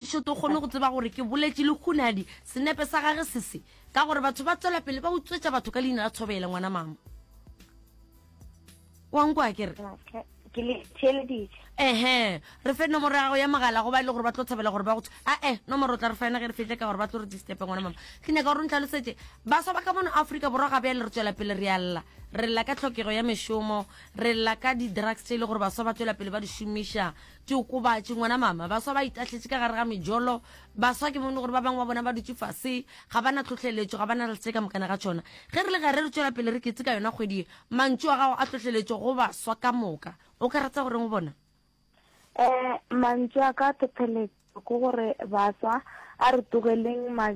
Šo to kgone go tseba gore ke boletše lehunadi senepe sa gage se se, ka gore batho ba tswela pele ba utswetša batho ka leina la Thobele ngwana mama. Wa nkwa ke re? Okay. Ke le theeleditše. Ehe, re fe nomoro ya gago ya mogala go ba e le gore ba tlo thabela gore ba go a e nomoro o tla re fa yona ge re fihle ka gore ba tlo re distepe ngwana mama ke nyaka gore o ntlhalosetše baswa ba ka mono aforika borwa ga bjale re tswela pele re alla re lla ka tlhokego ya mešomo re lla ka di-drugs tše e le gore baswa ba tswela pele ba di šomiša Diokobatši, ngwana mama. Baswa ba itahletše ka gare ga mejolo. Baswa, ke bone gore ba bangwe ba bona ba dutše fase. Ga ba na tlhohleletšo, ga ba na le se ka mokana ga tšona. Ge re le gare re tšwela pele re keteka yona kgwedi ye, mantšu a gago a tlhohleletšo go baswa ka moka. O ka rata go reng go bona? Ee, mantšu a ka a tlhohleletšo ke gore baswa a re tlogeleng ma,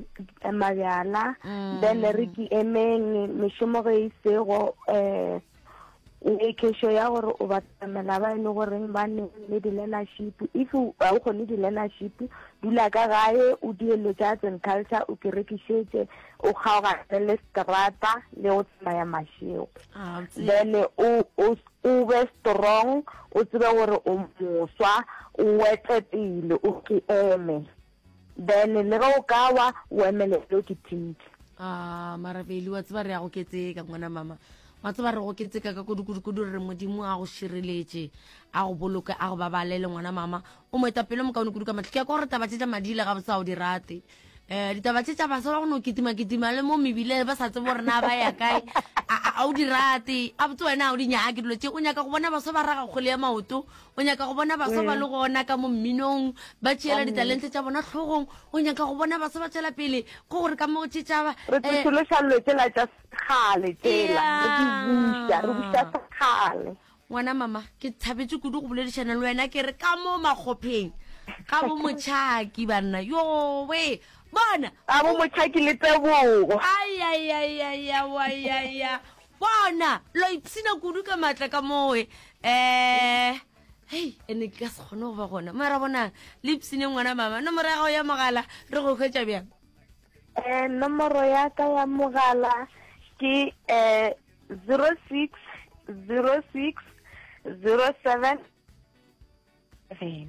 mabjala, then re ke emeng mešomo ge e sego, um. make sure ya gore o batamela ba e le goreng ba ne le di-learnership if ga o kgone di-learnership dula ka gae o dielo tsa arts and culture o kerekišetse o kgaogane le strata le go tsamaya mašego ah, then o be strong o tsebe gore o moswa o wete pele o ke eme Then le ge o ka wa o emele lo ke tinte. Ah, marabeli wa tseba re ya go ketseka ngwana mama wa tseba re go ketseka ka kudukudukudu re re modimo a go šireletše a go boloke a go babalele ngwana mama o mo etapele mokaone kudu ka matlho ke ya ka gore taba tše tša madile ga bosa o di rate um ditaba tše tša basa ba go no kitimakitima le mo mebile ba sa tsebo rena ba ya kae a o di rate a botse wena o di nyake dilo tše o nyaka go bona basa ba raga kgole ya maoto o nyaka go bona baswa ba mm. le gona ka mo mminong ba tšeela ditalente tša bona tlhogong o nyaka go bona baswa ba tswela pele ke gore ka mo tšetšaba re eh, tlošološa dilo tsela tša sekgale tsela re di buša re buša sekgale ngwana mama ke thabetse kudu go boledišana le wena ke re ka mo makgopheng ga bo motšhaki banna yowe bona ga bo motšhaki le tebogo ayayayayawayaya Bona, lo ipshina kudu ka matla ka moe. Eh, hei, ene ke ka se kgone go ba gona. Mara bonang, le ipshine ngwana mama. Nomoro ya gago ya mogala, re go hwetša bjang? Eh, nomoro ya ka ya mogala ke eh 06 06 07 7.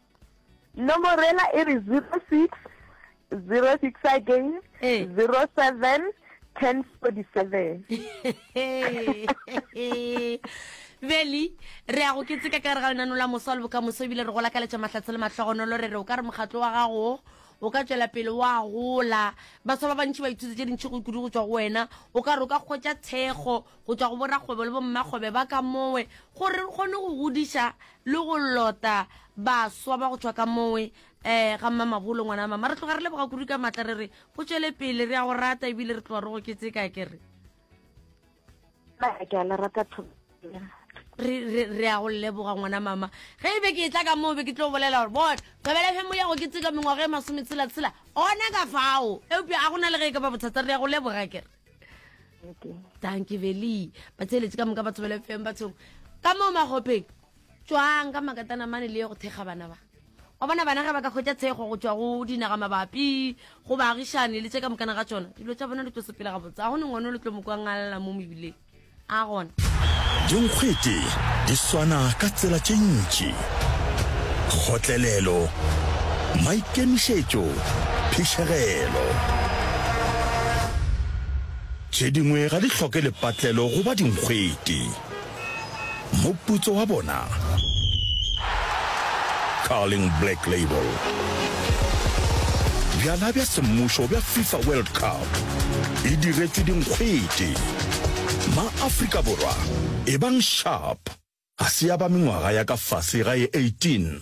Nomoro ela e re 06 06 again 07 1047 beli re ya go ke tseka ka re ga lenano la mosa le bokamoso ebile re go lakaletša mahlatse le mahlogonolo re re o ka re mokgatlo wa gago o ka tšwela pele wa gola batho ba bantši ba ithutse tše dintšhi go kudu go tswa go wena o ka re o ka kgwetša thekgo go tšwa go borakgwebo le bommakgwebe ba ka mowe gore re kgone go godiša le go lota baswa ba go tšwa ka mowe um ga Mmamabolo ngwana wa mama. Re tloga re leboga kudu ka matla re re go tšwele pele, re a go rata ebile re tloga re go ketseka ke re. Ke a le rata re ya go leboga ngwana mama ge e be ke e tla ka moo be ke tlo bolela gore bona thobela femo ya go ke tseka mengwaga e masome tshelatshela ona ka fao eupša a gona le ge e ka ba bothata re ya go leboga kere danki veli ba tseeletse ka moka batho ba lefeng bathong ka moo magopheng tswang ka makatana mane le ye go thekga bana ba wa bona bana ge ba ka kgwetsa tshego go tswa go dinaga mabapi go baagišane le tse ka mokana ga tsona dilo tsa bona di tlo sepela gabotse ga go ne ngwane o le tlo mo kwangalla mo mebileng A gona. Dinkgwete di swana ka tsela tše ntši, kgotlelelo, maikemišetšo, phišegelo. Tše dingwe ga di hloke lepatlelo go ba dinkgwete. Moputso wa bona, Carling Black Label. Bjala bja semmušo bja FIFA World Cup e diretšwe dinkgwete. Ma-Afrika Borwa, ebang Sharp ga se ya ba mengwaga ya ka fase ga e 18,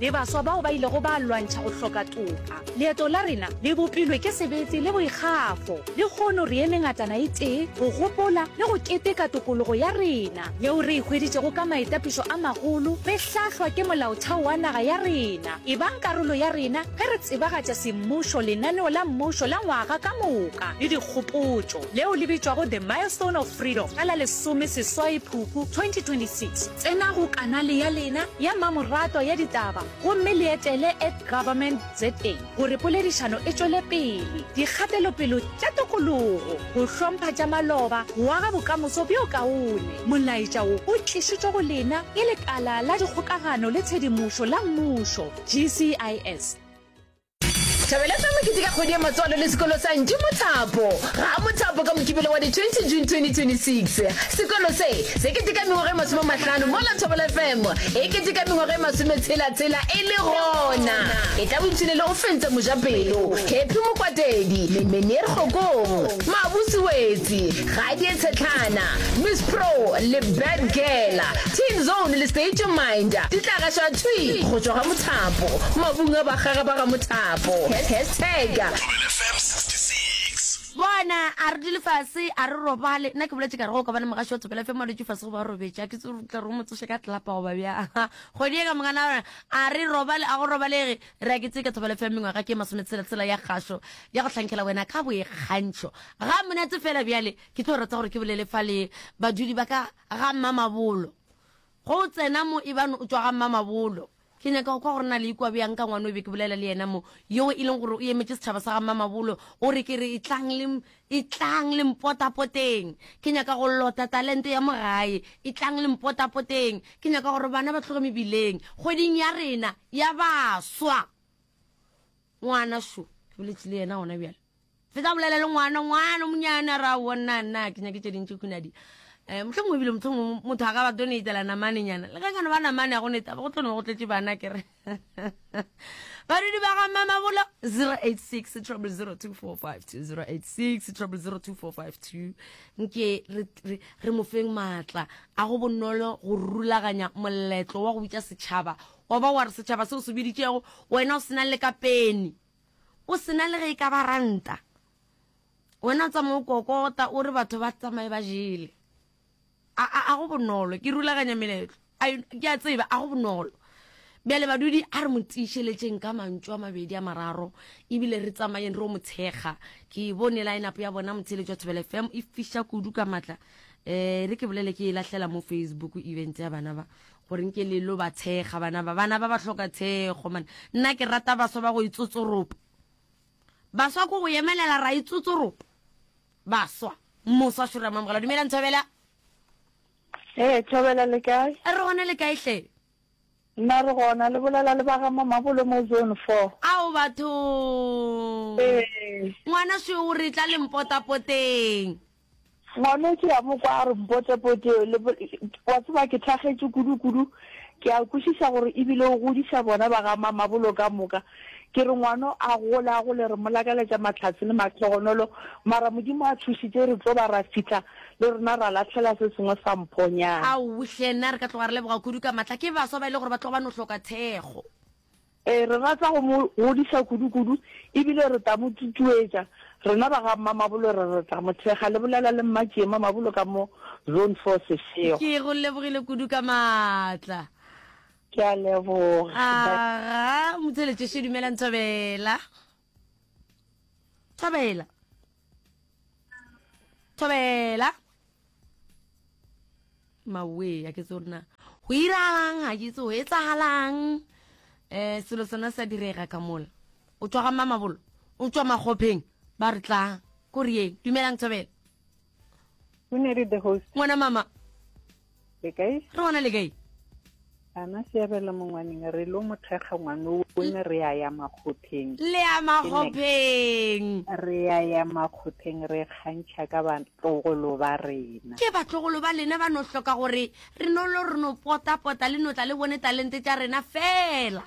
le baswa bao ba ilego ba lwantšha go hloka toka. Leeto la rena le bopilwe ke sebete le boikgafo. Lehono re eme ngatana e tee go gopola le go keteka tokologo ya rena yeo re e hweditšego ka maitapišo a magolo re hlahlwa ke Molaotheo wa naga ya rena. Ebang karolo ya rena ge re tsebagatša semmušo, lenaneo la mmušo la ngwaga ka moka le dikgopotšo leo le bitšwago The Milestone of Freedom ka la lesome seswai Phupu 2026. Tsena go kanale ya lena ya mmamoratwa ya ditaba gomme le etele at Government ZA gore poledišano e tšwele pele. Dikgatelopelo tša tokologo, go hlompha tša maloba, go aga bokamoso bjo kaone. Molaetša wo o tlišitšwe go lena ke Lekala la Dikgokagano le Tshedimošo la Mmušo, GCIS. Thabeletsa mokete ka kgwedi ya matswalo le sekolo sa Ntši Mothapo ga a Mothapo ka Mokibelo wa di 20 June 2026. Sekolo se se keteka mengwaga e masome mahlano mola Thobela FM e keteka mengwaga e masome tshela tshela e le gona e tla boipshine le go fentsa Mojapelo, Happy Mokwatedi, Menier Kgokong, Mabuse Wetsi, Gadie Tshetlana, Miss Pro le Bad Girl, Teen Zone le State Your Mind di tla gaša thwi go tšwa ga mothapo, mabung a bakgaga ba ga mothapo. Hashtag. Thobela FM 66. Bona, a re dule fase, a re robale. Nna ke boletše ka re, Go ka bana mogaši wa Thobela FM a dutše fase goba a robetše. A ke tsebe gore o tla re o mo tsoše ka tlelapa goba bjang. Kgodieka mongwana wa rena, a re robale, a go robalege. Re a keteka thobalofo ya mengwaga ke masometshela-tshela ya kgašo ya go hlankela wena ka boikgantšho. Ga monate fela bjale ke tlo rata gore ke bolele fa le badudi ba ka ga Mmamabolo. Go o tsena mo ebang o tšwa ga Mmamabolo. Ke nyaka go kwa gore na le ikwa bjang ka ngwano e be ke bolela le yena mo, yoo e leng gore o emetše setšhaba sa ga Mmamabolo, o re ke re etlang le Etlang le mpotapoteng, ke nyaka go lota talente ya mo gae. Etlang le mpotapoteng, ke nyaka gore bana ba tloge mebileng, kgweding ya rena ya baswa. Ngwana šo, ke boletše le yena gona bjale. Fetsa bolela le ngwana, ngwana monyana, ra bona nna, ke nyaketše dintši kunadi. Eh, mohleng mongwe ebile mohleng mongwe motho a ka ba donatela namanenyana, le ge ka no ba namane ya go neta, go tlo no go tletše bana, ke re. badudi ba ga mamabolo 086 086 nke re mofeng maatla a go bonolo go rulaganya moletlo wa go bitša setšhaba wa ba wa re setšhaba se o se biditšego wena o sena le ka peni o sena le ge e ka ba ranta wena o tsamaya o kokota o re batho ba tsamaye ba jele A, a, a go bonolo, ke rulaganya meletlo. A, ke a tseba, a go bonolo. Bjale badudi, a re mo tiišeletšeng ka mantšu a mabedi a mararo, ebile re tsamayeng re o mo thekga. Ke e bone line-up ya bona, motheeletši wa Thobela FM, e fiša kudu ka matla. Eh, re ke bolele ke e lahlela mo Facebook event ya bana ba, gore nke le lo ba thekga bana ba. Bana ba ba hloka thekgo, man. Nna ke rata baswa ba go itsotsoropa. Baswa ko go emelela ra itsotsoropa. baswa moswa šoro ya mamogela dumelang thobela ee thobela le kae a re gona le kae hle nna re gona le bolela le baga mamabolo mo zone four ao batho ngwana se o re tla lempotapoteng ngwana o ke ya mo kwa a re mpotepote wa tseba ke thagetse kudu-kudu ke a kwešiša gore ebile o godiša bona ba ga mamabolo ka moka Ke re ngwano a gola a gole re mo lakaletša matlhatse le mahlogonolo, mara Modimo a thušitše re tlo ba ra fihla le rena ra lahlela se sengwe sa mphonyana. Ao hle, na re ka tloga re leboga kudu ka matla ke baswa ba e le gore ba tloga ba no hloka thekgo. Ee, re rata go mo godiša kudu-kudu e bile re tla mo tutuetša. Rena ba ga Mma Mabolo re re tla mo thekga, le bolela le Mma Tšiema Mabolo ka mo Zone Four Seshego. Ke go lebogile kudu ka matla. Ke a leboga. Aga, motheletšeše, dumelang Thobela. Thobela. Thobela. Mawe, a ke tsore na. Go iralang, ga ke tsoe, etsagalang. Eh, selo sona sa direga ka mola. O tswa ga mama bolo. O tswa magopheng. Ba re tlang. Ko re yeng. Dumelang Thobela. o ne re the host ngwana mama le kae re bona le kae ana seabela mongwaneng re lo mothekga ngwano o ne re ya ya makgopheng le ya makgopheng re ya ya makgopheng re kgantšha ka batlogolo ba rena ke batlogolo ba lena ba no hloka gore re no lo re no pota pota le no tla le bone talente tša rena fela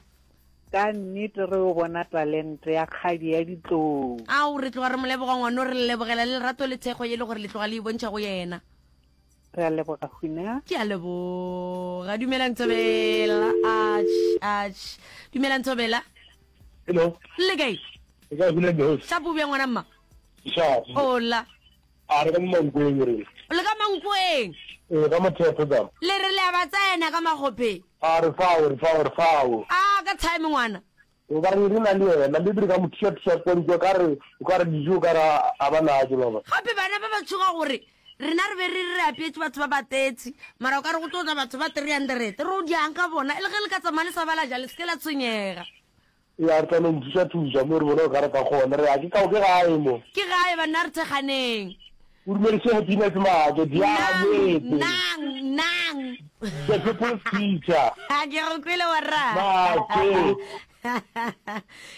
Ka nnete re yo bona talente ya kgadi ya ditlou. Ao, re tloga re mo leboga, ngwano, re le lebogela le lerato le thekgo ye le gore le tloga le e bontšha go yena. Re a leboga, Hwina. Ke a leboga. Dumela, Ntshobela. Atš, atš. Dumela, Ntshobela. Hello. Le kae? Ke kae, Hwina Johosh? Shapo, o bjang, ngwana mma? Ke shapo. Hola. A re ka mo mankweeng re. Le ka mankweeng. Ee, ka mothepho ka. Le re le a ba tsena ka magophe. A re fao, re fao, re fao. A ka time ngwana. Gobane re na le yena. Le dire ka mo thuša-thuša kontsi o ka re, o ka re dijo o ka re a ba na tše ba ba. Gape bana ba ba tšhoga gore rena re be re re re apeetše batho ba ba thirty mara o ka re go tlo tla batho ba three hundred re o diang ka bona e le ge le ka tsamaya le sa ba la ja le se ke la tshwenyega. Ee, a re tla no mo thuša-thuša mo re bona o ka re ka gona. Re a ke kao ke gae mo. Ke gae banna re thekganeng. O dumedišege Peanuts maake di a metse. Nang, nang, nang. The people's teacher. Ha ke go kwele warra. Maake.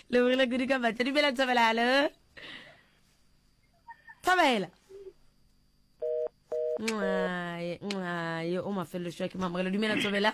Le bogile kudu ka matla. Dumela Thobela, hallo. Thobela. Nxaye, nxaye, o mafelelo shwa ke mamogelo. Dumela Thobela.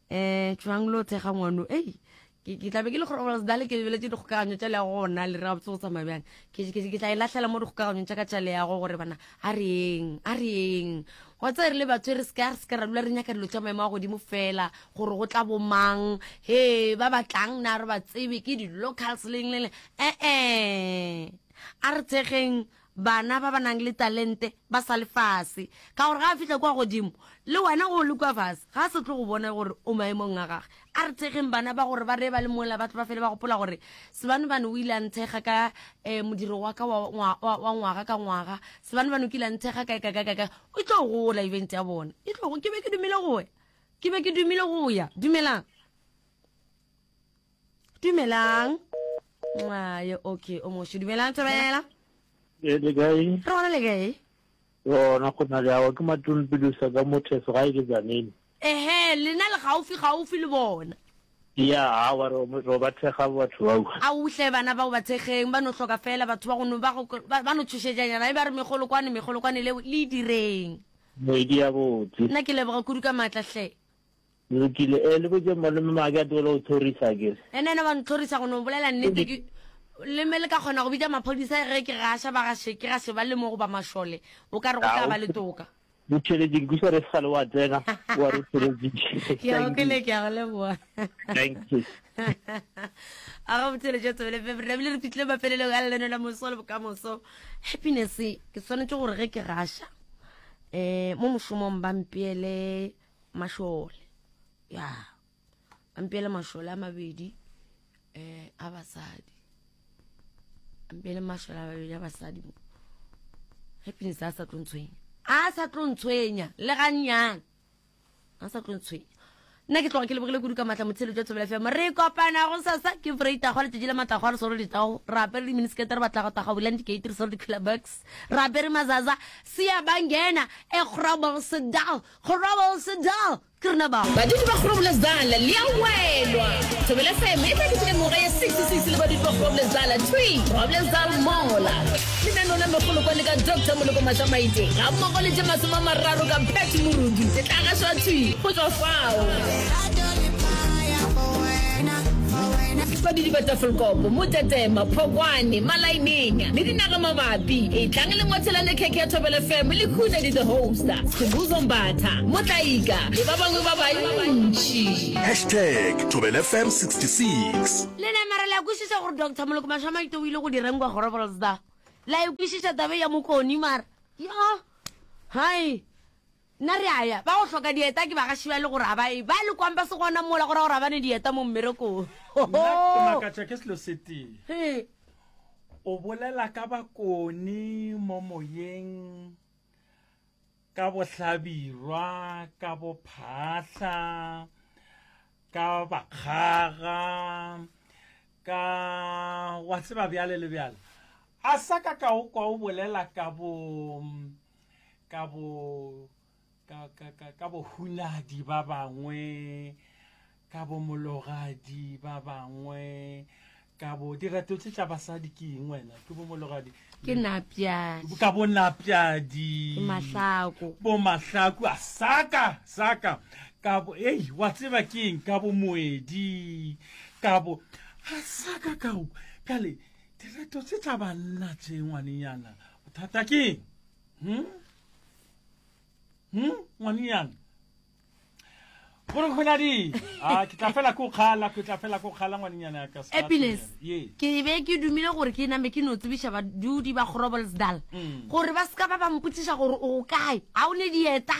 um tšwang lo thekga ngwano ei ke ke tlabe ke le gore ols dale ke lebeletse dikgokaganyo tša le ya go gona le re gabotse go tsamaya bjang ke ke- ke tla e lahlela mo dikgokaganyong tša ka tša le yago gore bana a re eng a re eng wa tsa re le batho e re seka re seka ra dula re nyaka dilo tša maemo a godimo fela gore go tla bomang he ba batlang na re ba tsebe ke di-locals leng le leng ee a re thekgeng bana ba ba nang le talente ba sa le fase, ka gore ga a fihla kua godimo, le wena o le kua fase, ga a se tlo go bona gore o maemong a gage. A re thekgeng bana ba gore ba re ba le mola ba tle ba fele ba gopola gore Sebanobano o ile a nthekga ka um modiro wa ka wa, wa, wa, wa ngwaga ka ngwaga. Sebanobano o kile a nthekga kae, kae, kae, kae, kae. E tlo gola event ya bona. E tlo, ke be ke dumile go ya. Ke be ke dumile go ya. Dumelang. dumelang ayo okay o mošo dumelang tsebela e le kae re gona le kae yona go na le awa ke matulpedusa ka motheso ga e ke tsanene ehe lena le gaufi gaufi le bona ya awa ro ba thekga batho bao a uhle bana bao ba thekgeng ba no hloka fela batho ba gono ba ba no tshošetšanyana e ba re megolo kwane megolo kwane leo le direng moedi ya botse nna ke leboga kudu ka maatla hle Lokile. Eh, le botše malome maake a tlogele go tlhorisa akere. Yena yena wa ntlhorisa go no bolela nnete ke Le mme le ka kgona go bitša maphodisa ge ke gaša ba gaše ke gaše ba le mo goba mašole o ka re go tla ba le toka. Re theletše ke sa re se gale wa tsena wa re theletše. Ke a go kwele ke a go leboa. Thank you. A go theletše tswele fe re bile re fitlile mafelelong a leno la moso le bokamoso. Happiness ke swanetše gore ge ke gaša eh mo mošomong ba mpeele mašole ya ampele mašole a mabedi um a basadi ampele mašole a mabedi a basadi mo happiness a sa tlo ntshwenya a sa tlo ntshwenya le gannyane a sa tlo ntshwenya nna ke tloga ke lebogile kudu ka matla motshelo jwa tsebela fm re kopana go sasa ke freitago a letšatši la matlago a re soro ditago re apere diminiskete re batlago taga bulang dikate re soro di-clubbucks re apere mazaza sea bangena e kgorabogsedal Groblersdal, Krnaba. Badudi ba Groblersdal le a welwa. Thobela FM e tladitse ka mengwaga ye 66 le badudi ba Groblersdal thwi. Groblersdal mola. Lenaneo la megolo kwa le ka Doctor Moloko Matlamaite ga mmogo le tše masome a mararo ka Pat Morudu se tla gašwa thwi go tšwa fao. Fa didiba tsa Vlkopo, Motetema, Phokwane, Malainenya le dinaga mabapi, etlang le ngwathelane khekhe ya Thobela FM le khune di the hoster, Sibuzo Mbatha, Motlaika le ba bangwe ba bantši. Hashtag Thobela FM 66. Le nama ra le a kwešiša gore Doctor Moloko Mašamaite o ile go direng kwa Groblersdal? La e kwešiša taba e ya Mokoni mara? Yoh! Hai! Nna re a ya. Ba go hloka dieta ke bagaši bale gore a ba e ba le kwampa se gona mola go ra gore a ba ne dieta mo mmerekong. Nna ke makatša ke selo se tee. O bolela ka bakoni mo moyeng, ka bohlabirwa, ka bophahla, ka bakgaga, ka wa tseba bjale le bjale. A sa ka ka o kwa o bolela ka bo ka bo ka ka ka ka bohunadi ba bangwe ka bo mologadi ba bangwe ka bo dirato tse tša basadi ke eng wena ke bo mologadi ke napjadi ka bo napjadi mahlako bo mahlako a saka saka ka bo ei wa tseba ke eng ka bo moedi ka bo a saka ka kale dirato tse tša banna tše ngwanenyana bothata ke hmm? hmm? ngwanenyana gore go na di a ah, ke tla fela ko kgala ke tla fela ko kgala ngwanenyana ya ka happiness ke be ke dumile gore ke name ke no tsebiša badudi ba grobolsdal mm. gore ba seka ba ba mpotsiša gore o kae ga o ne dieta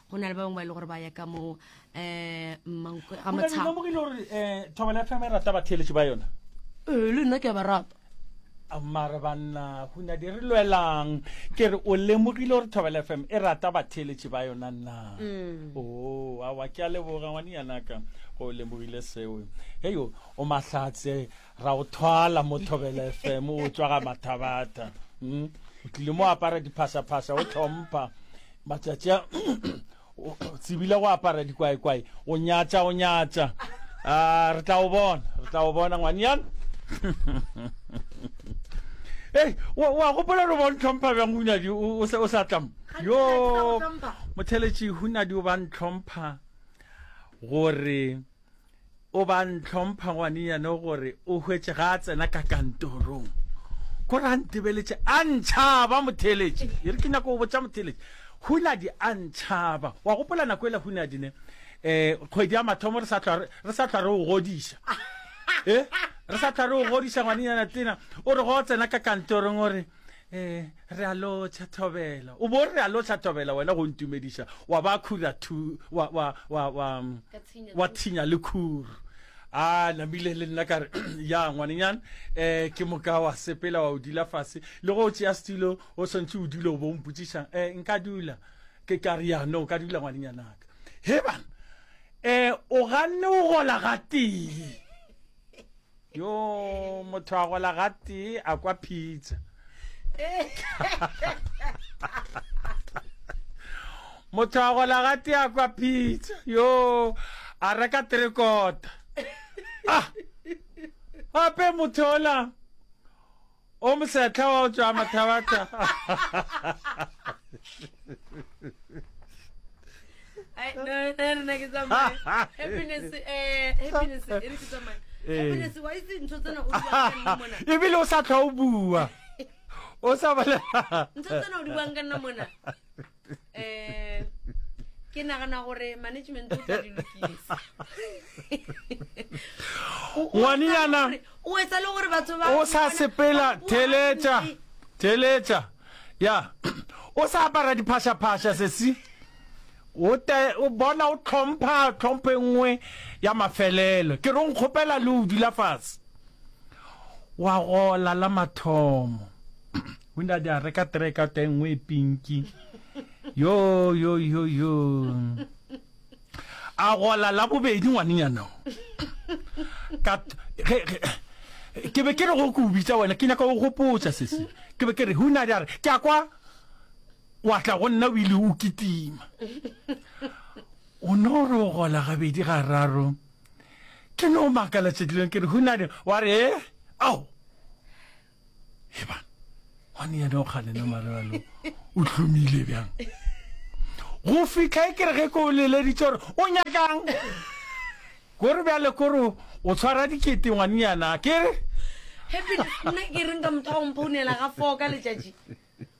go na le ba bangwe ba e le gore ba ya ka mo um mankwe ga motshaomogile gore um thobela ya fema e rata batheeletši ba yona ee le nna ke ya ba rata mare banna gona di re lwelang ke re o lemogile gore thobela f m e rata batheeletši ba yona nna mm. o oh, awa ke a leboga ngwane yanaka go lemogile seo heyo o mahlatse Ra go thwala mo Thobela FM o tswa ga mathabatha. Mm. O tlile mo apara diphasa-phasa o tlhompha matsatsi a o tsebile go apara dikwaekwae o nyatsa o nyatsa a re tla o bona re tla o bona ngwanyana ei wa gopola re bo ntlhompha bjang hunadi o sa tlamo yo motheletši hunadi o ba ntlhompha gore O ba ntlhompha ngwanenyane gore o hwetše ga a tsena ka kantorong. Gore a ntebeletše a ntšhaba Motheeletši. E re ke nyaka go botša Motheeletši. Hunadi a ntšhaba. Wa gopola nako ele Hunadi ne? Eh, kgwedi ya mathomo re sa hlwa re, re sa hlwa re o godiša. Eh, re sa hlwa re o godiša ngwanenyana tena. O re go tsena ka kantorong o re, Ee, re a lotšha thobela. O bo re a lotšha thobela, wena go ntumediša, wa ba khura thu, wa, wa, wa, wa, wa thinya le khuru. A namile le nna ka re, ya ngwanenyana, eh, ke moka wa sepela wa o dula fase. Le go tšea setilo, o swantšhe o dule o bo mpotsiša, eh, nka dula. Ke ka re, ya, no, ka dula ngwanenyanaka. He bana, eh, o ganne o gola gatee. yo motho a gola gatee a kwa pizza motho a gola gatee a kwa pizza yo a reka trekota ah gape motho ola O mosehla wa go tšwa mathabatha. Eh, ebile o sa tlhwa o bua o sa balela eh ke nagana gore management o tla di lokisa ngwaneyana o etsa le gore batho ba o sa sepela theletša theletša ya o sa apara diphashaphasha sesi o bona o tlhompha tlhomphe nngwe ya mafelelo ke re o nkgopela le o dula fatshe wa gola la mathomo O ile a di a reka tereka teng ngwe e pinki. Yo, yo, yo, yo. A gola la bobedi ngwanenyana. Ka, ge, ge, ke be ke re go ko bitsa wena, ke nyaka go gopotsa sese. Ke be ke re, ho na di a re, ke a kwa, wa tla go nna o ile o kitima. O no re o gola gabedi ga raro. Ke no makala tšedileng ke re, ho na di, wa re, eh, ao. eba gone yena o kganena marelo o hlomile bjang go fitlha e kere ge ko o leleditse gore o nyakang kore bjale kore o tshwara dikete ngwanenyana kere nna ke reng ka motho wa go mphounela ga foo ka letšatši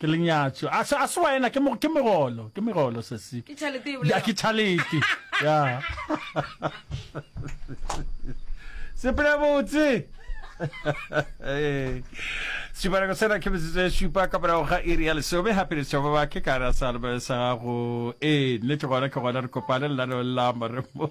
Ke lenyatšo. A se, a se wena, ke, ke megolo, ke megolo se se. Ke tšhalete e bolelwa. Ke tšhalete, ya. Sepela botse. Sešipanako sena ke metsotso e šupa ka morago ga iri ya lesome gape letšwa ba bake ka ra sa albe sa gago ee nnete gona ke gona re kopane lenaneong la moremo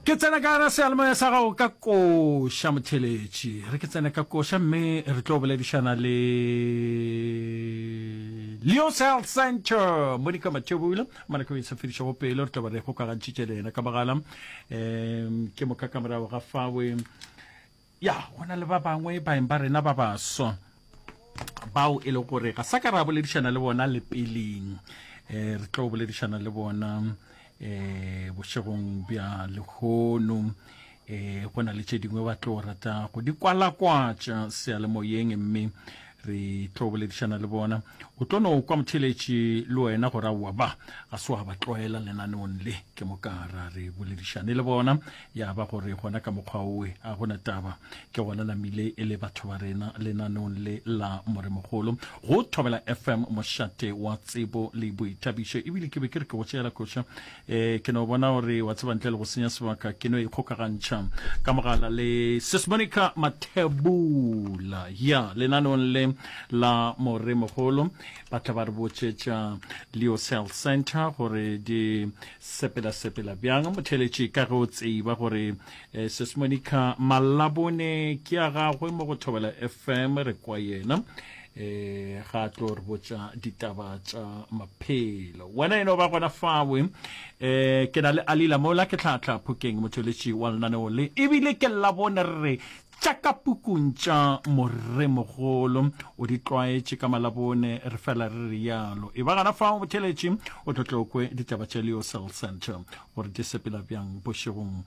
Ke tsena ka gare ga seyalemoya sa gago ka koša, motheeletši. Re ke tsene ka koša mme re tlo boledišana le Leo's Health Centre, Monica Mathebula. Monica o isafedišago pelo, re tlo ba re kgokagantšhitše le yena ka mogala. Um ke moka ka morago ga fawe. Ya, go na le ba bangwe baeng ba rena ba baswa bao e le gore ga sa ka ra boledišana le bona le peleng um re tlo boledišana le bona um bošegong bja lehono eh go na le tše dingwe ba tlo rata go di kwalakwatša seyalemoyeng mme Re tlo boledišana le bona. O tlo no kwa motheletši le wena gore aowa ba ga se wa ba tlwaela lenaneong le. Ke mo ka ra re boledišane le bona ya ba gore gona ka mokgwa owe a go na taba. Ke gona namile e le batho ba rena lenaneong le la Moremogolo go Thobela FM, mošate wa tsebo le boithabišo. Ebile ke be ke re ke go tšeela koša eh ke no bona gore wa tseba ntle le go senya sebaka ke no ikgokagantšha ka mogala le sesmonica mathebula ya lenanong le la more mogolo ba tla ba re botšetša leo cell center gore di sepela-sepela bjang motheletši ka ge o tseba gore eh, sesmonica malabone ke ya gagwe mo go thobela fm re kwa yena e ga tlo re botša ditaba tša maphelo wena eno ba gona fawe um eh, ke na le alila mola ke tlhatlha phokeng motšweletši wa lenaneo le ebile ke labone re re tša ka pukung tša moremogolo o di tlwaetše ka malabone re fela re re yalo e ba gana fa botšheletše o tlotlokwe ditaba tša leo cell center gore di sepela bjang bošegong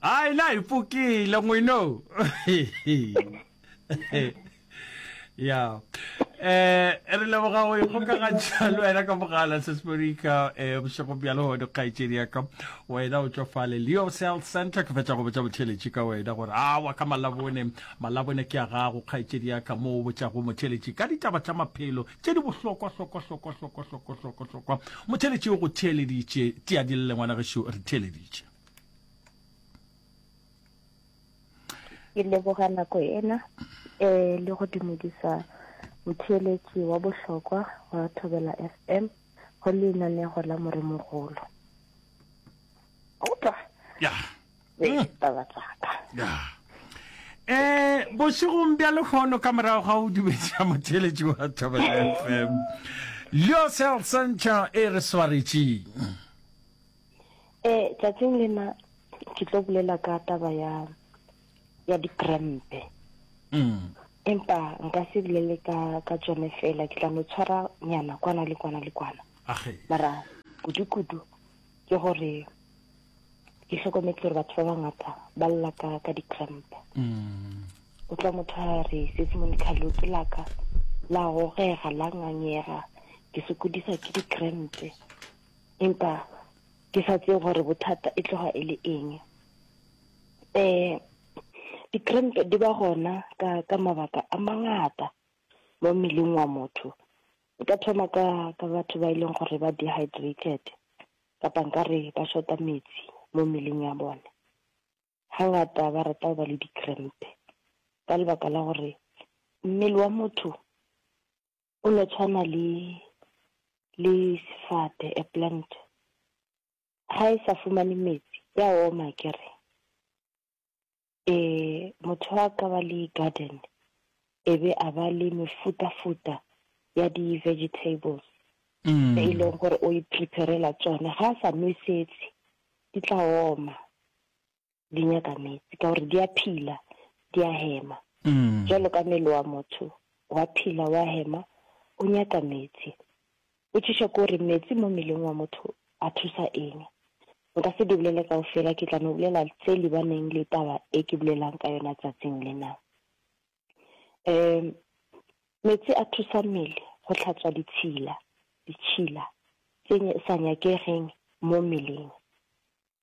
hayi la hi pfukile n'wino ya eh re leboga go ikgokagantšha le wena ka mogala sesperika um eh, bošego bja legono kgaetsedi yaka wena o tsofale leo cell center ke fetša go botša motheletši ka wena gore a wa ka malabone malabone ke ya gago kgaetsedi yaka mo o botšago motheletši ka ditaba tša maphelo tše di bohlokwahlokwahlokwahlokwahlokwahlokwahlokwa motheeletše o go theeleditše teadilele ngwana gešo re theeleditše ke leboga nako ena um le go dumedisa motheeletši wa bohlokwa wa thobela f m go lenanego la moremogolo opa ya be mm. taba tsaka um bošegong bja lekgono ka morago ga o dubetša motheletši wa thobel f m leo sel central e re swaretšeng um eh, tsatsing lena ke tlo bolela ka taba ya ya dikrempe mm. empa nka se bolele ka ka tsone fela ke tla no tshwara nyana kwana le kwana le kwana mara kudu-kudu ke gore ke hlokometse gore batho ba bangata ba lla ka ka di-cramp mm. o tla motho a re sesimone khalo ke laka la gogega la ngangega ke sokodisa ke di-crampe empa ke sa tseye gore bothata e tloga e le eng um di-crampe di ba gona ka ka mabaka a mangata mo mmeleng wa motho Nka thoma ka ka batho ba e leng gore ba dehydrated kapa nkare ba shota metsi mo mmeleng ya bone. Hangata ba rata go ba le di-cramp ka lebaka la gore mmele wa motho o no tshwana le le sefate a plant, ga e sa fumane metsi ya oma kere. e motho a ka ba le garden e be a ba le mefutafuta ya di-vegetables mm. e leng gore o iphiperela tsone ga a sa nwesetse di tla oma di nyaka metsi ka gore di a phila di a hema mm. jalo ka mmele wa motho wa phila wa hema o nyaka metsi Potšišo ke gore meetse mo mmeleng wa motho a thusa eng? Nka se di bolele kaufela, ke tla no bolela tse lebaneng le taba e ke bolelang ka yona tsatsing lena. Um Meetse a thusa mmele go hlatswa ditshila, ditšhila, tse sa nyakegeng mo mmeleng.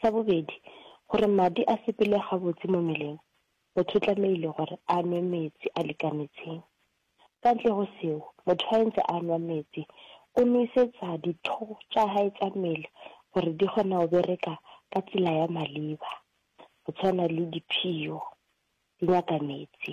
Sa bobedi, gore madi a sepele gabotse mo mmeleng, motho o tlamehile gore a nwe metsi a lekanetseng. Ka ntle go seo, motho a entse a nwa metsi, o nwesetsa ditho tša hae tša mmele gore di kgona go bereka ka tsela ya maleba, go tshwana le diphio di nyaka metsi.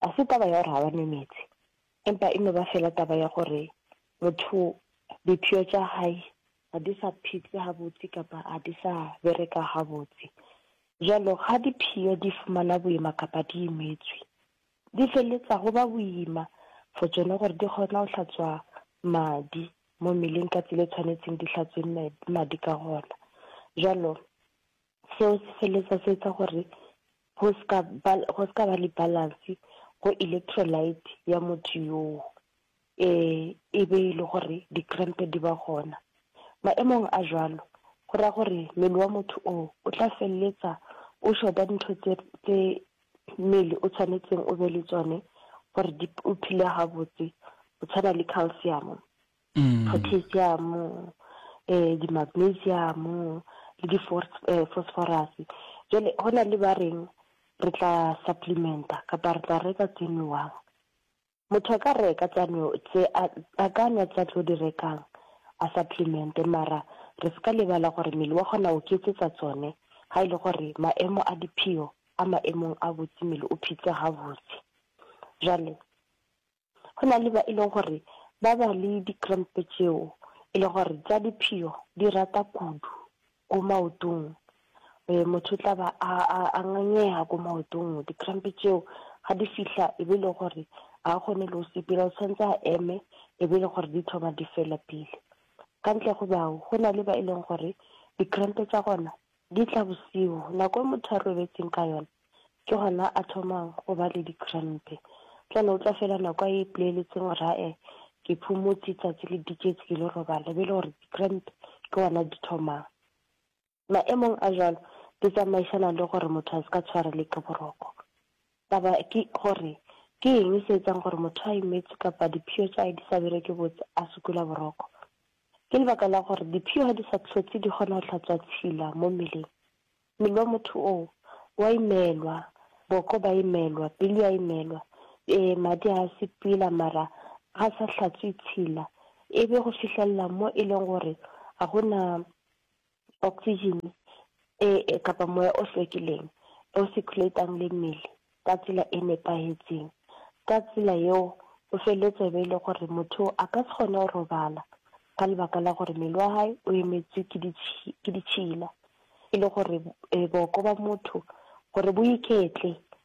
ga se taba ya gore ga ba nwe meetse, empa e no ba fela taba ya gore motho diphio tša hae ga di sa phitse gabotse kapa ga di sa bereka gabotse. Jalo ga diphio di fumana boima kapa di imetswe, di feleletsa go ba boima for tsone gore di kgona go hlatswa madi mo mmeleng ka tsela e tshwanetseng di hlatswe madi ka gona. Jalo Seo se feleletsa se etsa gore go se ka ba, go se ka ba le balance go electrolyte ya motho yoo, e be e le gore di-cramp di ba gona. Maemong a jwalo go raya gore mmele wa motho oo o tla feleletsa o short-a dintho tse, tse mmele o tshwanetseng o be le tsone gore o phele gabotse, go tshwana le calcium. potassium, di-magnesium le di-phosphorus. Jwale go na le ba reng re tla supplementa kapa re tla reka tse nowang. Motho a ka reka tsa no tse a ka nwa tsa tlo di rekang a supplemente mara re se ka lebala gore mmele wa kgona go ketsetsa tsone ga e le gore maemo a diphio a maemong a botse mmele o phitse gabotse. Jwale Go na le ba e lego gore ba ba le di-cramp-e tšeo e lego gore tša diphio di rata kudu ko maotong. Motho o tla ba a ngangega ko maotong, di-cramp-e tšeo ga di fihla e be e le gore ga a kgone le go sepela, o tshwanetse a eme e be e le gore di thoma di fela pele. Ka ntle go bao, go na le ba e leng gore di-cramp-e tša gona Di tla bosigo, nako e motho a robetseng ka yona, ke gona a thomang go ba le dikrempe. Bjale o tla fela nako a ipoleeletseng gore ae, ke phumotse, tsatsi le diketse, ke lo robala, e be e le gore dikrempe ke gona di thomang. Maemong a jwalo, di tsamaišana le gore motho a se ka tshwarelwe ke boroko. Taba ke gore, ke eng se etsang gore motho a imetswe kapa diphio tša hae di sa bereke botse a sokola boroko? Ke lebaka la gore diphio ga di sa hlotse di kgona go hlatswa tshila mo mmeleng. Mmele wa motho oo o a imelwa, boko ba imelwa, pelo ya imelwa, e, madi a sepela mara ga sa hlatswe tshila e be go fihlelela mo e leng gore ga go na oxygen e kapa moya o hlwekileng o circulate-ang le mmele ka tsela e nepahetseng. Ka tsela yeo o feleletsa e be e le gore motho a ka se kgone go robala ka lebaka la gore mmele wa hae o emetswe ke ke ditšhila. E le gore boko ba motho gore bo iketle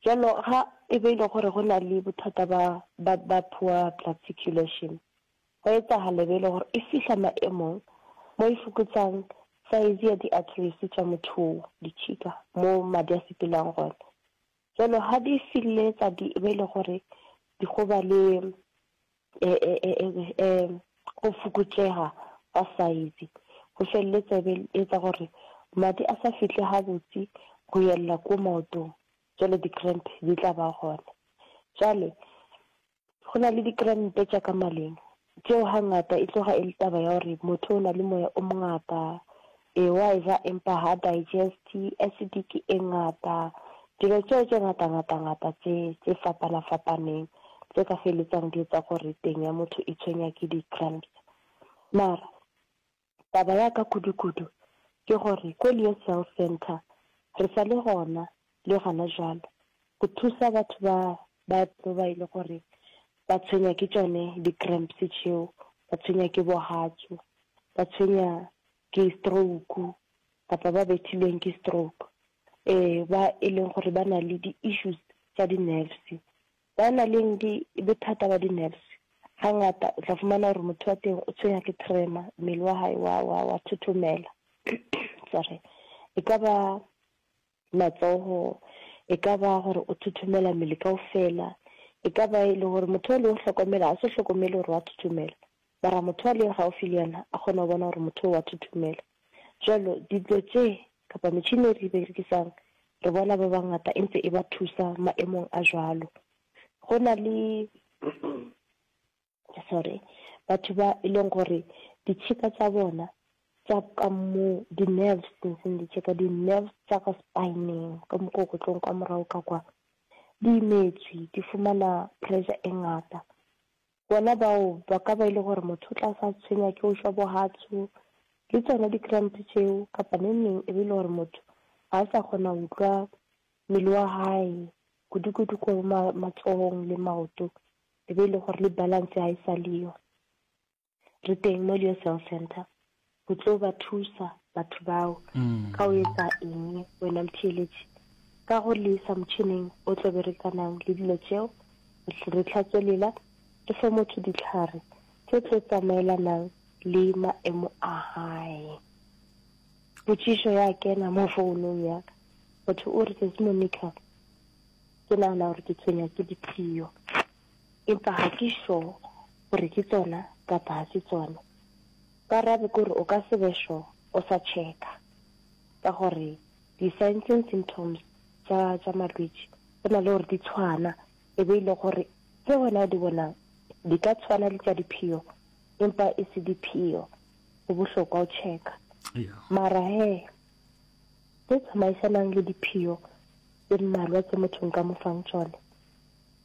Bjalo ga e be e le gore go na le bothata ba, ba, ba poor blood circulation, gwa etsagala e be e le gore e fihla maemong mo e fokotsang size ya di-arteries tša motho wo, ditšhika, mo madi a sepelang gona. Bjalo ga di feleletsa di e be e le gore di go ba le e, e, e, e, e, go fokotšega ga saizi go felele tsebe etsa gore madi a sa fihle gabotse go yelela ko maotong jalo di-cramp di tla ba gona jale go na le di-crampe tša ka maleng tšeo ga ngata e tloga e le taba ya gore motho o na le moya o mongata Ewa eja empa ha digeste acidic e ngata. Dilo tšeo tše ngatangata-ngata tše, tše fapana-fapaneng, tše ka feletsang di etsa gore teng ya motho e tshwenywa ke di-cramps. Mara, taba ya ka kudu-kudu ke gore ko Leo Cell Centre re sa le gona le gona bjalo, go thusa batho ba ba tlo ba e le gore ba tshwenywa ke tšone di-cramps tšeo, ba tshwenywa ke bohatsu, ba tshwenywa ke stroke kapa ba bethilweng ke stroke, ba e leng gore ba na le di-issues tša di-nerves. Ba na leng bothata ba di-nerves ga ngata o tla fumana gore motho wa teng o tshwenywa ke tremor, mmele wa hae wa thothomela, sorry. E ka ba matsogo, e ka ba gore o thothomela mmele kaofela, e ka ba e le gore motho o le o hlokomela a se hlokomele gore wa thothomela, mara motho a leng gaufi le yena a kgona go bona gore motho o wa thothomela. Jalo dilo tše kapa metšhini e re e berekisang re bona ba bangata e ntse e ba thusa maemong a jalo. Go na le sorry, batho ba e leng gore ditšheka tša bona tša ka mo di-nerves seng ditšheka di-nerves tša ka spineng ka mokokotlong kwa morago ka kwa di imetswe di fumana pressure e ngata bona bao ba ka ba e le gore motho o tla sa tshwenya ke o shwa bohatsu le tsona di-cramp tšeo kapa ne neng e be e le gore motho ga a sa kgona go utlwa mmele wa gae kudu-kudu ko matsohong le maoto e be e le gore le balance ga e sa le yo. Re teng mo Leo Cell Center go tlo ba thusa batho bao ka o etsa eng wena motheeletši ka go le isa motšhineng o tlo berekanang le dilo tšeo re tlhatswe lela re fe motho ditlhare tse tlo tsamaelanang le maemo a gae potšišo ya kena mo founong ya ka motho o re tsatsi monica Ke nagana gore ke tshwenywa ke diphio, empa ga ke sure gore ke tsona kapa ga se tsone. Karabo ke gore o ka se be sure o sa checka, ka gore di-signs and symptoms tša tša malwetši go na le gore di tshwana, e be e le gore tse wena o di bonang di ka tshwana le tša diphio empa e se diphio. Go bohlokwa o checka. Yeah. Mara he tše tsamaisanang le diphio tše mmalwa tše motho nka mo fang tšone,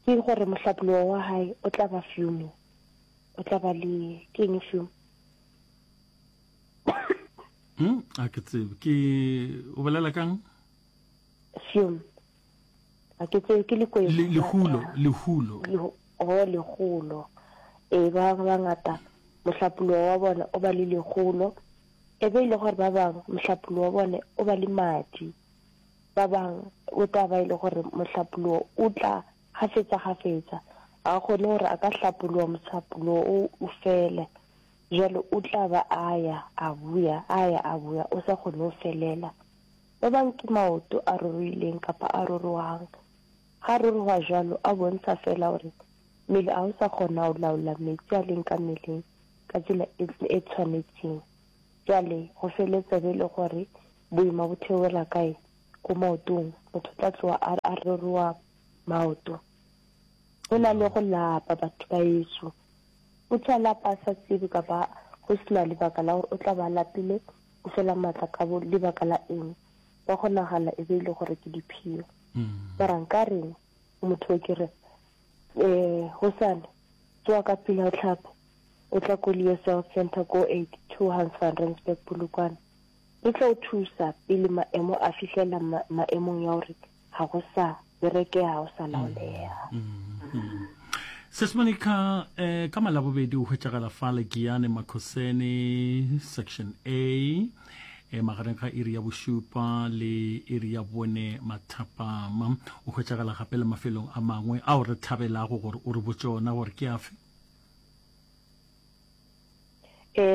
ke gore mohlapologo wa gae o tla ba fume, o tla ba le ke eng fume? Hmm, a ke tsebe ke o bolela kang? Fume a ke tsebe ke leko e Le- lehulo lehulo Lehu- oh lehulo ee ba bangwe ba ngata mohlapologo wa bona o ba le lehulo e be e le gore ba bangwe mohlapologo wa bone o ba le madi ba bangwe o tla ba e le gore mohlapologo o tla gafetsa gafetsa ga o kgone gore a ka hlapologa mohlapologo o o fele jalo o tla ba a ya a buya a ya a buya o sa kgone go felela Ebang ke maoto a ruruileng kapa a ruruhang, ga a ruruha jwalo, a bontsha feela gore mmele ga o sa kgona go laola meetse a leng ka mmeleng ka tsela e, e tshwanetseng. Bjale, go feletsa be e le gore boima bo theogela kae? Ko maotong. Motho o tla tloga a, a ruruha maoto. Go na le go lapa, batho ba ešo. Motho a lapa a sa tsebe kapa go se na lebaka la gore o tla ba a lapile, o fela maatla ka bo lebaka la eng wa go nagana e be ile e gore ke diphio mm. mara nka reng motho o ke re um gosane tsoa ka pila o tlhape o tla ko leo south center ko eighty two hans van rensburg polokwane re tla o thusa pele maemo a fitlhelela maemong ya gore ga go sa bereke ga go sa laolega sesmonica um ka malabobedi o hwetšagala fa legiane makhosene section a e magareng ga iri ya bošupa le iri ya bone mathapama o hwetšagala gape le mafelong a mangwe ao re thabelago gore o re botšona gore ke afe E,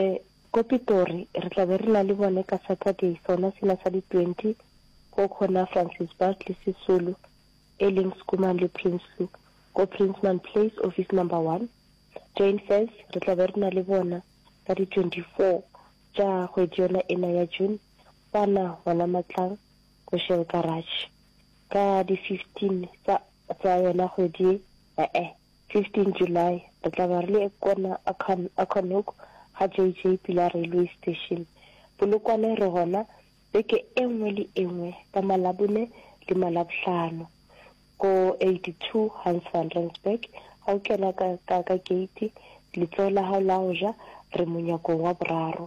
ko Pitori, re tla be re na le bone ka Saturday, sona sena sa di 20, ko Corner Francis Baard le Sisulu, e leng Schoeman le Prinsloo, ko Prinsman Place, office number one. Jane Fez, re tla be re na le bona ka di 24 tša kgwedi yona ena ya June, kwana gona Matlang, ko Shell Garage. Ka di 15 tsa, tsa yona kgwedi ye, e-e. 15 July, re tla be re le Ekona, Akanhook, ga JJ pela railway station, Polokwane, re gona beke e nngwe le e nngwe ka Malabone le Malabohlano, ko 82 Hans van Rensburg, ga o kena ka, ka, ka gate, letsogo la gago la go ja, re monyakong wa boraro.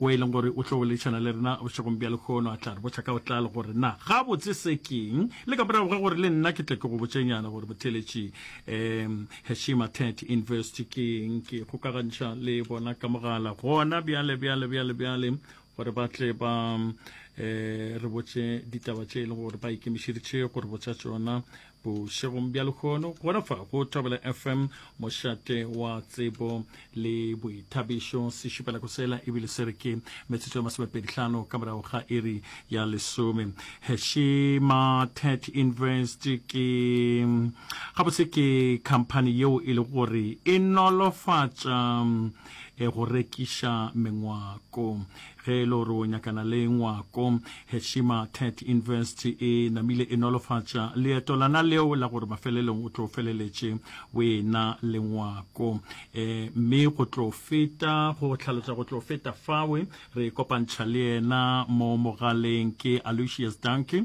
Wo e leng gore o tlo boledišana le rena bošegong bja lehono a tla re botša ka botlalo gore na gabotse se keng, le ka morago ga gore le nna ke tle ke go botšenyana gore botheeletši um Heshima Tet Invest ke eng. Ke ikgokagantšha le bona ka mogala gona bjale bjale bjale bjale gore ba tle ba um re botše ditaba tše e leng gore ba ikemišeditše go re botša tšona. Bošegong bja lehono gona fa go Thobela FM, mošate wa tsebo le boithabišo, se šupela go sela ebile se re ke metsotso ya masomepedihlano ka morago ga iri ya lesome. Heshima Tet Invest ke gabotse ke khamphani yeo e le gore e nolofatša e go rekiša mengwako Ge e le gore o nyakana le ngwako, Heshima Tech Invest e namile e nolofatša leeto lana leo la gore mafelelong o tlo feleletše o ena le ngwako. E, mme go tlo feta go hlalosa go tlo feta fawe, re kopantšha le yena mo mogaleng. Ke Aloysius Danke,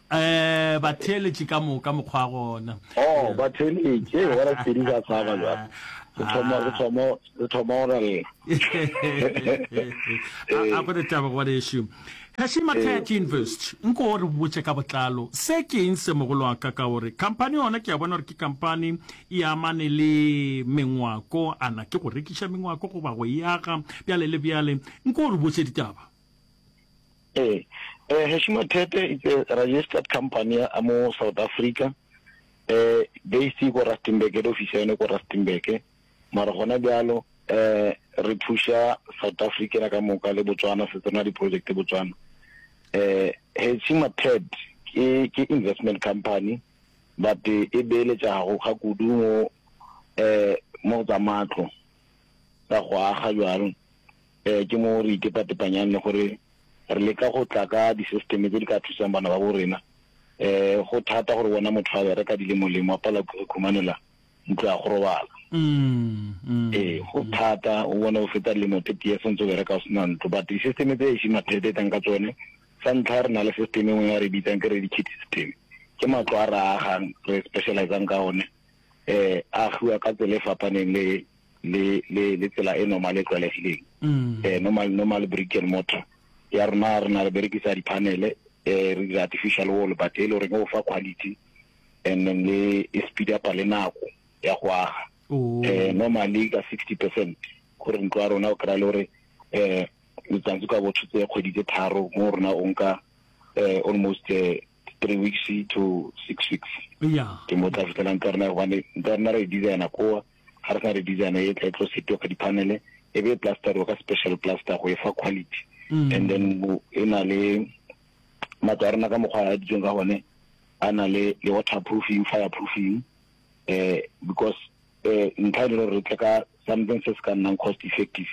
Ee, batheeletši ka moka mokgwa gona. Oh, batheeletši, ee, wa Raspedi ka tshaba jwale. Re thoma, re thoma, re thoma go raleng. A, a go re taba gore ešo. Kaši Mathaya ke invest, nko o re botše ka botlalo. Se ke eng se mogolo wa ka ka gore company yona ke a bona gore ke company e amane le mengwako, ana ke go rekiša mengwako goba go e aga, bjale le bjale. Nko o re botše ditaba. Ee, eh, Heshima Tete is a registered company ya mo South Africa eh based ko Rustenburg le office yone ko Rustenburg mara gona bjalo eh re thuša South Africa ka moka le Botswana se tsena di-project Botswana eh Heshima Ted ke ke investment company but e beeletšago ga kudu mo eh mo tsa matlo ka go aga jalo Ee, ke moo re itepatepanyang le gore re leka go tla ka disesteme tse di ka thusang bana ba bo rena. Ee, go thata gore bona motho a bereka di le molemo, a palelwa ke go ikhumanela ntlo ya go robala. Ee, go thata, o bone o feta lemo tse tee se ntse o bereka o sena ntlo. But disesteme tse ešing mathete e tlang ka tsone, sa ntlha re na le sesteme e nngwe ya re bitsang ke re di kit system. Ke matlo a re a agang, re specialize-ang ka one. Ee, a agiwa ka tsela e fapaneng le le le le tsela e normal e tlwaelegileng mm. eh normal normal brick and mortar ya rena rena re berekisa di panel eh re dira artificial wall but e le re go fa quality and then le e speed up le nako ya go aga oh. eh normally ka 60% gore ntlo ya rona o kra le gore eh letsatsi ka botho tse kgwedi tse tharo mo rona o nka eh almost eh, three weeks to six weeks yeah ke mo tla fitlelang ka rena one nka rena re designer koa ga re sa re design e tla e tlo setiwa ka diphanele e be e plasteriwa ka special plaster go e fa quality mm. and then e na le matlo a rena ka mokgwa a ditsweng ka gone a na le le water proofing fire proofing eh because eh ntlha e le gore re tle ka something se se ka nnang cost effective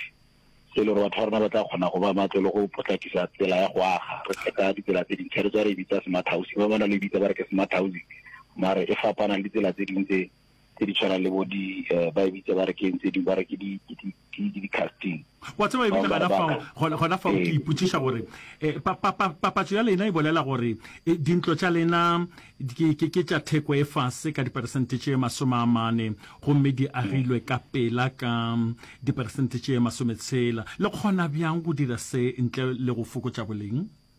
se le gore batho ba rona ba tla kgona go ba matlo le go potlakisa tsela ya go aga re tle ka ditsela tse dintšha re tswa re e bitsa smart housing ba bona le bitsa ba re ke smart housing mare e fapana le ditsela tse dingwe tse tse di tshwana le bo di eh, ba e bitsa ba re ke ntse di ba re ke di di-casting wa tseba ebile gona fao gona fao ke ipotsiša gore eh, papatso ya lena e bolela gore eh, dintlo tša lena ke tša theko e fase ka diperesente tše masome a mane gomme di agilwe ka pela ka diperesente tše masome tshela le kgona bjang go dira se ntle le go fokotša boleng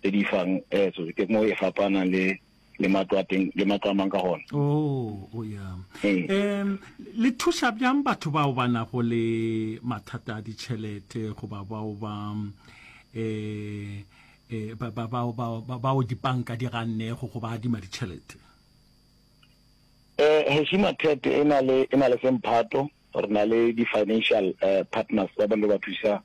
tse di fang etso eh, ke mo e fapana le le matlo a teng le matlo a mang ka gona o oh, o ya um le thuša bjang batho bao ba nago le mathata a ditšhelete goba bao ba um bao dipanka di gannego go ba adima ditšhelete um heshima tet e na le semphato re na le di-financial um partners ba ba le ba thusa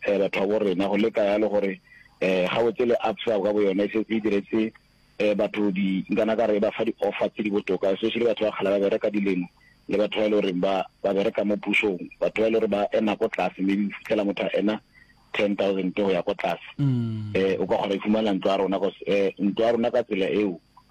um bathwabo rena, go leka yalo gore um gabotse le Absa ka boyona e setse e diretse um batho di nkana ka re e ba fa di-offer tse di botoka, especially batho ba kgale ba bereka dilemo le batho ba e le goreng ba ba bereka mo pusong, batho ba e le gore ba ena ko tlase, maybe o fitlhela motho a ena ten thousand go ya ko tlase. um o ka kgona ifumana ntlo ya rona cause um ntlo ya rona ka tsela eo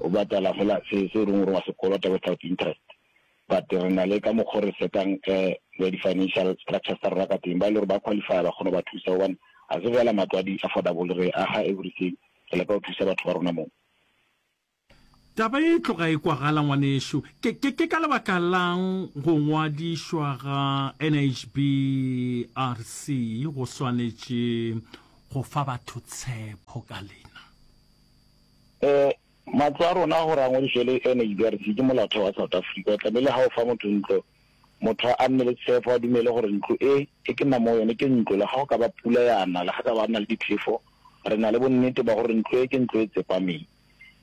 o batala fela se se reng gore wa se kolota without interest but re na le ka mokgwa re setang um di-financial structures tsa rona ka teng ba e le gore ba qualify ba kgona ba thusa gobane ga se fela matlo a di-affordable re aga everything re leka go thusa batho ba rona moo taba e tloga e kwagala ngwanešu ke, ke, ke ka lebaka lang go ngwadišwa ga nhrc go swanetše go fa batho tshepo ka lena E, matlo a rona gore a ngwadišwe le NHBRC ke molaotheo wa South Africa. O tlamehile ha o fa motho ntlo, motho a nne le tshefo, a dumele gore ntlo e, e ke nnang mo go yone, ke ntlo. Le ga go ka ba pula ya na, le ga ka ba nna le diphefo, re na le bonnete ba gore ntlo e ke ntlo e tsepameng.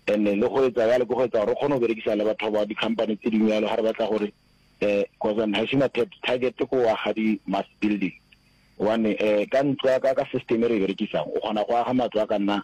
And-e le go etsa yalo ke go etsa gore re kgone go berekisana le batho ba di-company tse dingwe yalo ga re batla gore um cause I'm has a target ke go aga di-mass building. Gobane um ka ntlo ya ka, ka system e re e berekisang, o kgona go aga matlo a ka nna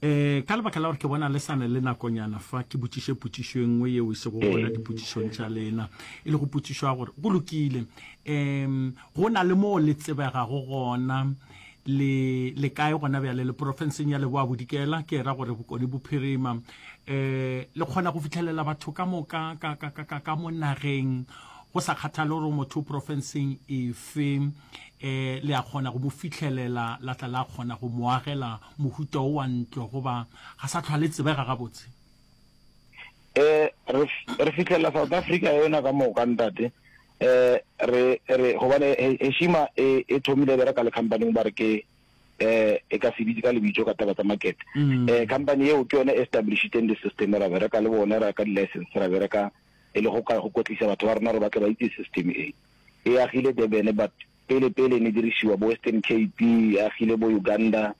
eh ka lebaka la gore ke bona le sane le nakonyana fa ke botšiše potšišo e nngwe yeo e sego gona dipotšišong tša lena e le go potšišwa gore go lokile um go na le moo le tsebegago gona le le kae gona bjale le porofenseng ya leboa bodikela ke ra gore bokone bophirima um eh, le kgona go fitlhelela batho ka moka ka mo nageng go sa kgathale gore motho o porofenseng efe e le a kgona go mo fihlelela la tla la kgona go mo agela mohuta o wa ntlo goba ga sa tlhwa le tsebega gabotse eh re re fitlela South Africa yona ka moka ntate eh re re gobane heshima e e thomile bera ka le company ba re ke eh e ka sebitse ka lebitso ka taba tsa market mm. eh company eo ke yone established in the system ra bera ka le bona ra ka license ra bera ka e le go ka go kotlisa batho ba rona re batla ba itse system e E agile Durban but pele pele e ne dirišiwa bo Western Cape, e agile bo Uganda,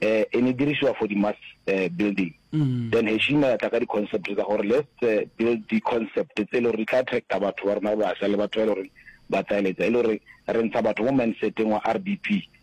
eh, e ne dirišiwa for di mass eh, building. Then Heshima ya tla ka di concept tsa gore let's eh, build di concept tse e le gore di tla attracta batho ba rona ba basha le batho ba e le gore ba tsaeletsa e le gore re ntsha batho mo mindseteng wa RDP.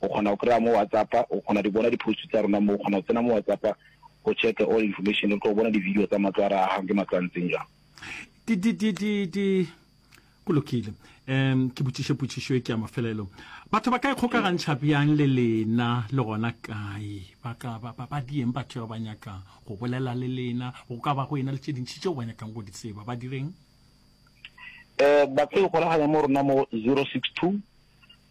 o kgona go kry-a mo WhatsApp-a, o kgona di bona di-post tsa rona mo, o kgona go tsena mo WhatsApp-a go check all information, o tlo bona di-video tsa matlo a re agang ke matlo a ntseng jang. Di, di, di, di, di, go lokile. Um ke botšiše potšišo e ke ya mafelelo. Batho ba ka ikgokagantšha bjang le lena le gona kae? Ba ka ba, ba, ba dieng batho ba ba nyakang go bolela le lena? Go ka ba go ena le tše dintši tšeo ba nyakang go di tseba, ba direng? Eh, ba ka ikgolaganya mo rona mo 062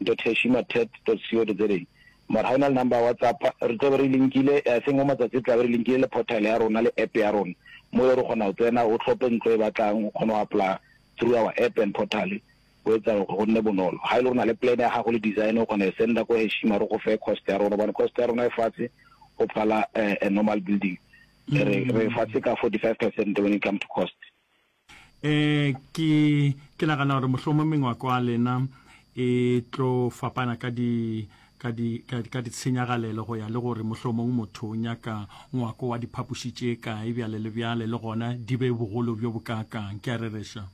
Nto Theshy Mathet dot co dot za Mara ga o na le number ya WhatsApp, re tlo be re linkile, I think go matsatsi re tla be re linkile le portal ya rona le App ya rona, mo e le gore o kgona go tsena, o tlhope ntlo e batlang, o kgone go apply-a through our App and portal, go etsa gore go nne bonolo. Ga e le gore o na le plan ya gago le design, o kgona go e send-a ko Heshy, mara o go fe cost ya rona, gobane cost ya rona e fatshe go phala a normal building, re e fatshe ka forty five percent when it come to cost. Eh, ke, ke nagana gore mohlomong mengwako a lena e tlo fapana ka di ka di ka, ka ditshenyagalelo go ya le gore mohlomong motho o nyaka ngwako wa diphapoši tše kae bjale le bjale le gona di be bogolo bjo bokaakang ke a rereša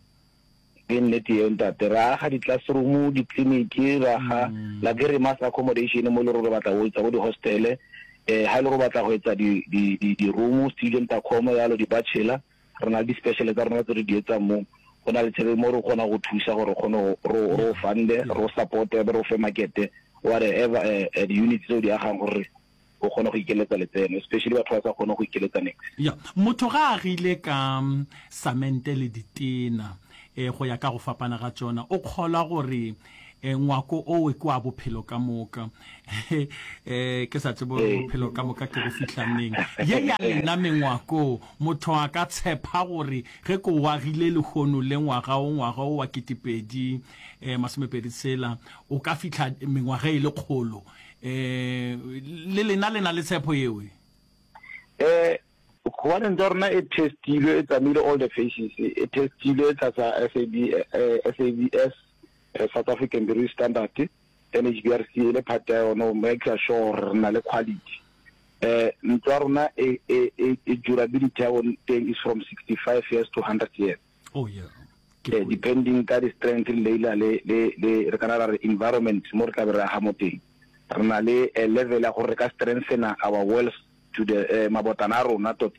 ke nnete yeo ntate ra aga di-classroom ditleliniki ra ga mm. la ke re mass accommodation mo e le gore re batla go etsa bo di-hostele um eh, ga e le gore o batla go etsa di-room student accomo yalo di-bachelor Re na le di-special tsa rona tse re di etsang mo go na le tšhelete mo re kgona go thusa gore re kgone go ro ro Yeah. fund-e Yeah. ro support-e be re o fe market-e whatever eh, eh, di-units tse o di agang gore o kgone go ikeletsa letseno especially batho ba sa kgone go ikeletsa nix ya motho ga a agile ka mm, samente le ditena eh, go ya ka go fapana ga tsona o kgolwa gore E, ngwako owe ke wa bophelo ka moka. E, ke sa tsebe gore bophelo ka moka ke go fihla neng. Ye ya lena mengwako, motho a ka tshepa gore ge ke o agile lehono le ngwaga o, ngwaga o wa ketepedi e, masomepedi tshela, o ka fihla mengwaga e le kgolo. E, le lena le na le tshepo yewe? E, gobane ntwa rona e testilwe, e tsamaile all the phases, e testilwe tlasa SAB, e, SABS, re South African British Standard, NHBRC e le part ya yone go make-a sure gore re na le quality. Um ntlo ya rona e, e, e, e durability ya bone teng is from 65 years to 100 years. Oh yeah. Ke Eh, go- depending ka di-strength le leila le, le, le re kana ra re environment mo re tla be re aga mo teng. Re na le eh, level ya gore re ka strengthena our walls to the eh, mabotana a rona tot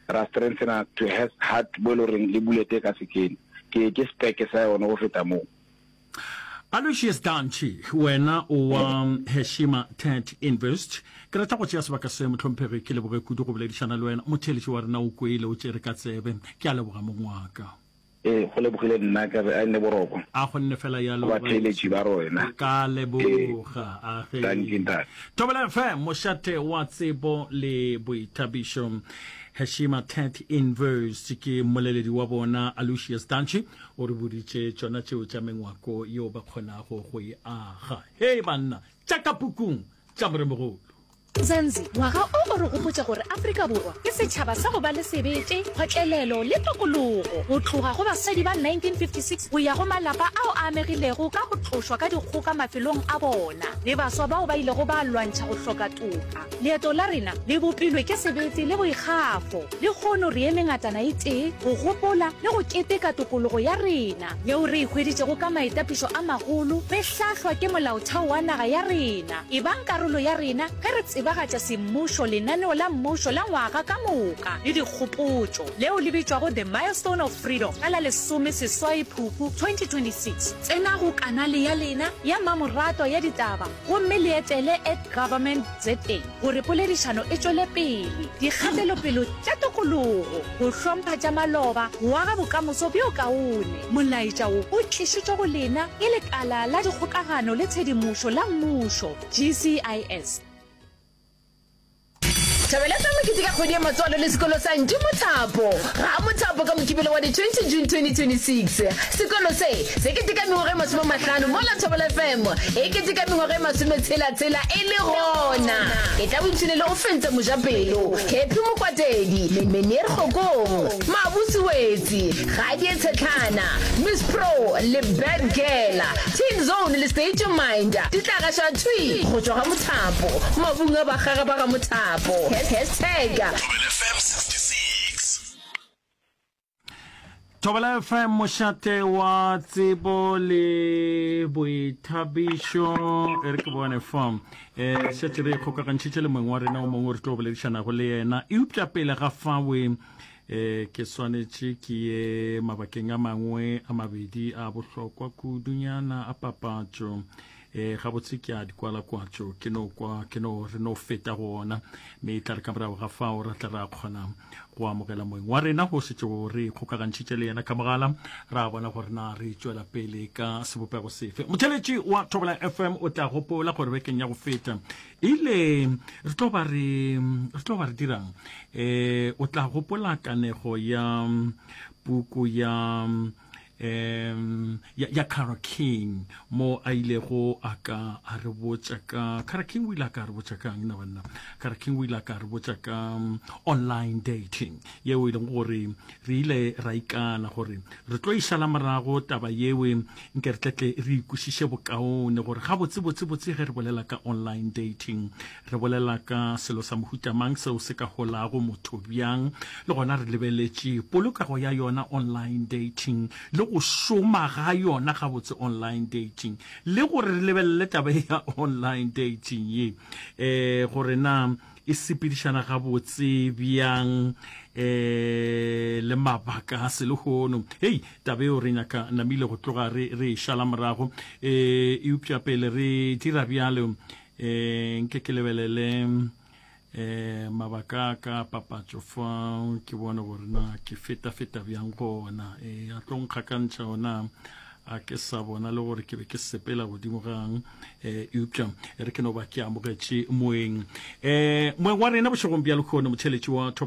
ra strengthena to has heart bo e le goreng le bulete ka sekene ke ke speke sa yone go feta moo Aloysius Dantšhi, wena o wa Heshima Tent Invest. Ke rata go tšea sebaka se, mohlomphegi, ke leboge kudu go boledišana le wena. Motheeletši wa rena o kwele, o tšere ka tsebe. Ke a leboga mongwaka. Ee, go lebogile nna ka re a nne boroko. A go nne fela yalo, Go batheeletši ba rena. Ka leboga. A ge. Dankie, Ntate. Thobela FM, mošate wa tsebo le boithabišo. Heshima Tech Invest ke mmoleledi wa bona Alucious Dantšhi o re boditše tšona tšeo tša mengwako yeo ba kgonago go e aga. Hei banna, tša ka pukung tša moremogolo. Zanzi, ngwaga o o re gopotša gore Afrika Borwa ke setšhaba sa go ba le sebete, kgotlelelo le tokologo. Go tloga go basadi ba 1956 go ya go malapa ao a amegilego ka go tlošwa ka dikgoka mafelong a bona le baswa bao ba ilego ba lwantšha go hloka toka, leeto la rena le bopilwe ke sebete le boikgafo. Lekgono re eme ngatana e tee go gopola le go keteka tokologo ya rena. yeo re e hweditšego ka maitapišo a magolo, re hlahlwa ke molaotheo wa naga ya rena, ebang karolo ya rena ge re tsebagatša semmušo, lenaneo la mmušo la ngwaga ka moka le dikgopotšo, leo le bitšwago The Milestone of Freedom ka la lesome seswai Phupu 2026. Tsenago kanale ya lena ya mmamoratwa ya ditaba gomme le etele at government za. gore poledišano e tšwele pele, dikgatelopele tša tokologo, go hlompha tša maloba, go aga bokamoso bjo kaone. Molaetša wo o tlišitšwe go lena ke Lekala la Dikgokagano le Tshedimošo la Mmušo, GCIS. Thabela tsa Mokete ka kgwedi ya matswalo le sekolo sa Ntši Mothapo. Ga a mo thapo ka Mokibelo wa di 20 June 2026. Sekolo se, se keteka mengwaga e masome a mahlano mola Thobela FM e keteka mengwaga e masome tshela tshela e le gona e tla boipshine le go fentsa mojapelo Happy Mokwatedi, Menier Kgokong, Mabusi Wetsi, Gadie Tshetlhana, Miss Pro le Bad Girl, Teen Zone le State Your Mind di tla gaša thwi go tšwa ga mothapo, mabung a bakgaga ba ga mothapo. Hashtag. Thobela FM mošate wa tsebo le boithabišo e re ke bone form um šetse re kgokagantšhitše le mongwe wa rena o mongwe re tlo boledišanago le yena eupša pele ga fawe um ke swanetše ke ye mabakeng a mangwe a mabedi a bohlokwa kudunyana a papatšo e gabotse ke a di kwala kwatso ke no kwa ke no re no feta go ona mme e tla re ka morago ga fao ra tla ra kgona go amogela moeng wa rena go setšego re kgokagantšhitše le yena ka mogala ra bona gore na re tšwela pele ka sebopego sefe motheletši wa thobela fm o tla gopola gore bekeng ya go feta ile re tlo ba re re tlo ba re dirang um o tla gopola kanego ya puku ya um, um ya, ya Cara King mo a ilego a ka a re botša ka Cara King o ile a ka a re botša ka na banna Cara King o ile a ka a re botša ka um, online dating yeo e leng gore re ile ra ikana gore re tlo išala morago taba yewe nke re tletle re ikwešiše bokaone gore ga botse botse botse ge re bolela ka online dating Re bolela ka selo sa mohuta mang seo se ka holago motho bjang, le gona re lebeletše polokego ya yona online dating le go šoma ga yona gabotse online dating, le gore re lebelele taba ye ya online dating ye um gore na e sepedišana gabotse bjang um le mabaka a selehono. Hei, taba eo re nyaka namile go tloga re re e šala morago, um eupša pele re dira bjalo, um nke ke lebelele um mabaka a ka papatšo fa ke bone gore na ke feta-feta bjang go ona um a tlo nkgakantšha ona a ke sa bona le gore ke be ke sepela godimo gang um eh, eupša re ke no ba ke amogetše moeng um moeng wa rena bošegong bja lekgono motheletši wa thobela